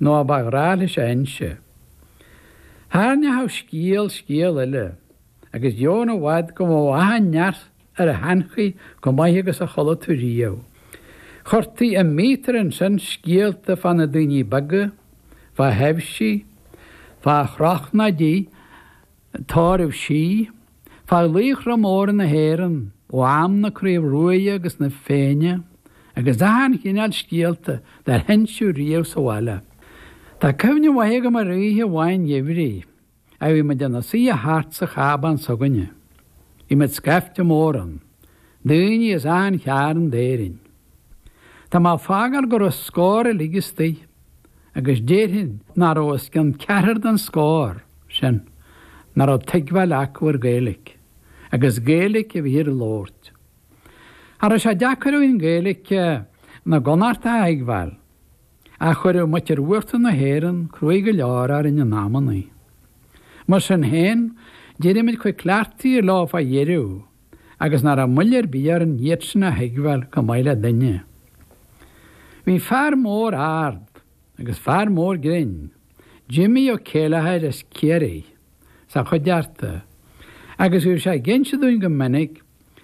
nó a ba ghnách leis a inse. Tharraingeodh scéal scéal eile, agus chan i bhfad go mbíodh achan fhear ar a sheanchaí chomh maith agus a chuala tú riamh. Chuirtí i míotar ansin scéalta fá na daoine beaga, fá thaibhsí, fá chróchnaidí, Tórraimh Sí, fá laochra móra na hÉireann ó am na Craobh Ruaidhe agus na Féinne agus achan chineál scéalta dár hinseadh riamh sa bhaile. Tá cuimhne mhaith agam ar oíche amháin gheimhridh a bhí muid ina suidhe thart sa chábán s'againne. Bhí muid scaifte mór ann, daoine as achan chearn d'Éirinn. Tá mé ag fágáil go raibh scór uilig istigh. agus déarfainn nach raibh os cionn ceathrar den scór sin nach raibh tuigbheáil acu ar Ghaeilic, agus Gaeilic a bhíthear a labhairt. Cha raibh sé deacair againn Gaeilic na gConnachtach a thuigbheáil, ach chuireadh muintir uachtar na hÉireann cruaidh go leor orainn in amannaí. Mar sin féin, d'éirigh muid chomh cleachtaithe leo fá dheireadh. agus nach raibh moill ar bith orainn iadsan a thuigbheáil chomh maith le duine. Bhí fear mór ard agus fear mór grinn, Jimmy Ó Céilleachair as Ciarraí, sa chuideachta agus bhí sé ag inse dúinn go minic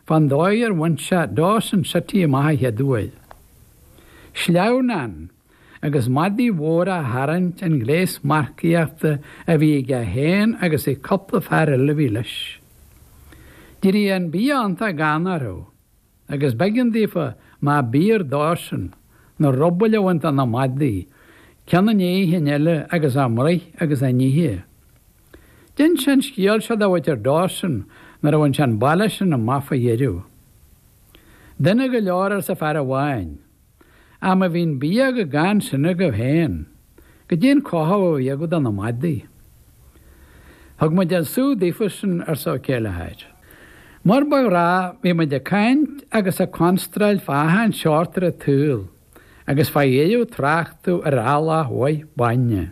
fán dóigh ar bhain sé Dawson City amach an chéad uair. Sleamhnán! agus madaidh mhóra á tharraingt an gléas marcaíochta a bhí aige féin agus ag cúpla fear eile a bhí leis. D'éirigh an bia iontach gann orthu, agus b'éigean daofa, má b'fhíor dósan, na rubaill a bhaint de na madaidh, ceann i ndiaidh an chinn eile, agus a mbruith agus a n-ithe. D'ins sé an scéal seo do mhuintir Dawson nuair a bhain sé an baile sin amach faoi dheireadh. Dona go leor, arsa fear amháin. am a bhí an bia chomh gann sin agaibh féin, goidé an cothú a bhí agaibh do na madaidh. Thug muid an sú daofa sin, arsa Ó Céilleachair. Mar ba ghnách bhí muid ag caint agus ag constráil fá achan seort ar an tsaol agus fá dheireadh tráchtadh ar eallach mhaith bainne.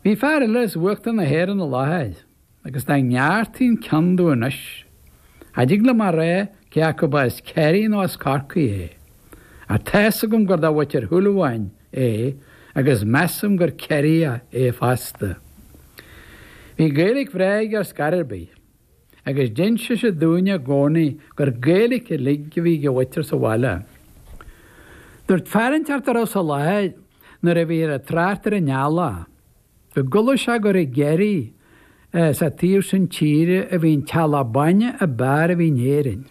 Bhí fear eile as uachtar na hÉireann i láthair. agus dá ngearrtaí an ceann domh anois, cha dtig liom a rá cé acu ba as Ciarraí nó as Corcaigh é, ach tá's agam gur de mhuintir Shúilleabháin é agus measaim gur Ciarraíoch é fosta. Bhí Gaeilic bhreá aige ar scor ar bith, agus d'inseadh sé dúinn i gcónaí gur Gaeilic uilig a bhí ag a mhuintir sa bhaile. Dúirt fear inteacht a raibh sa láthair nuair a bhíthear ag trácht ar an eallach, Go gcuala sé gur i gCiarraí is sa taobh sin tíre a bhí an t-eallach bainne a b'fhearr a bhí in Éirinn.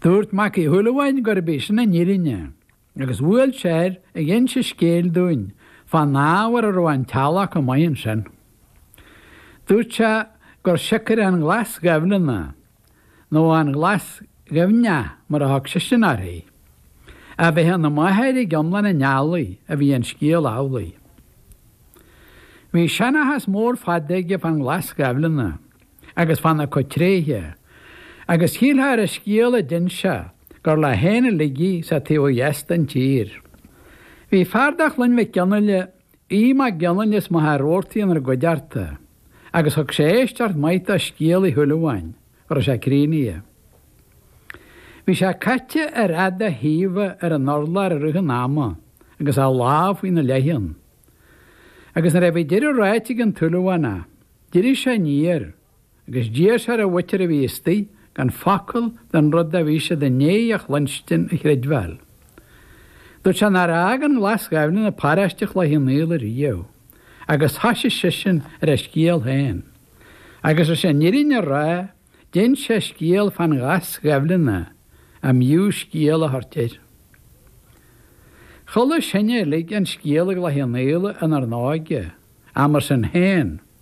Dúirt Mac Uí Shúilleabháin gurb í sin an fhírinne agus bhuail sé air ag inse scéil dúinn fán ábhar a raibh an t-eallach chomh maith ansin. Dúirt sé gur siocair an Ghlas Ghaibhleanna nó an Ghlas Ghaibhneach mar a thug seisean uirthi, a bheith ina máthair ag iomlán an eallaigh a bhí an scéal amhlaidh. Bhí seanchas mór fada aige fán Ghlas Ghaibhleanna agus fána cuid tréithe, agus shílfeá ar an scéal a d'inis sé gur leo féin uilig í sa taobh ó dheas den tír. Bhí fear de Chloinn Mhic Fhionnaile Aodh Mac Fhionnaile as Machaire Rabhartaigh inár gcuideachta, agus thug sé éisteacht mhaith do scéal Uí Shúilleabháin, go raibh sé críochnaithe. Bhí sé caite ar fhad a thaoibhe ar an urlár i rith an ama agus a lámh faoina leithcheann, agus nuair a bhí deireadh ráite ag an tSúilleabhánach, d'éirigh sé aniar, Agus d'iarr sé ar an mhuintir a bhí istoigh gan focal den rud a bhí siad i ndéidh a chluinstin a chreidbheáil. Dúirt sé nár fhág an Ghlas Ghaibhleanna paráiste Chloich Cheann Fhaola riamh, agus thoisigh seisean ar a scéal féin. Agus leis an fhírinne a rá, d'inis sé scéal fán Ghlas Ghaibhleanna a mb'fhiú scéal a thabhairt air. Chuala sinne uilig an scéal i gCloich Cheann Fhaola inár n-óige, ach mar sin féin.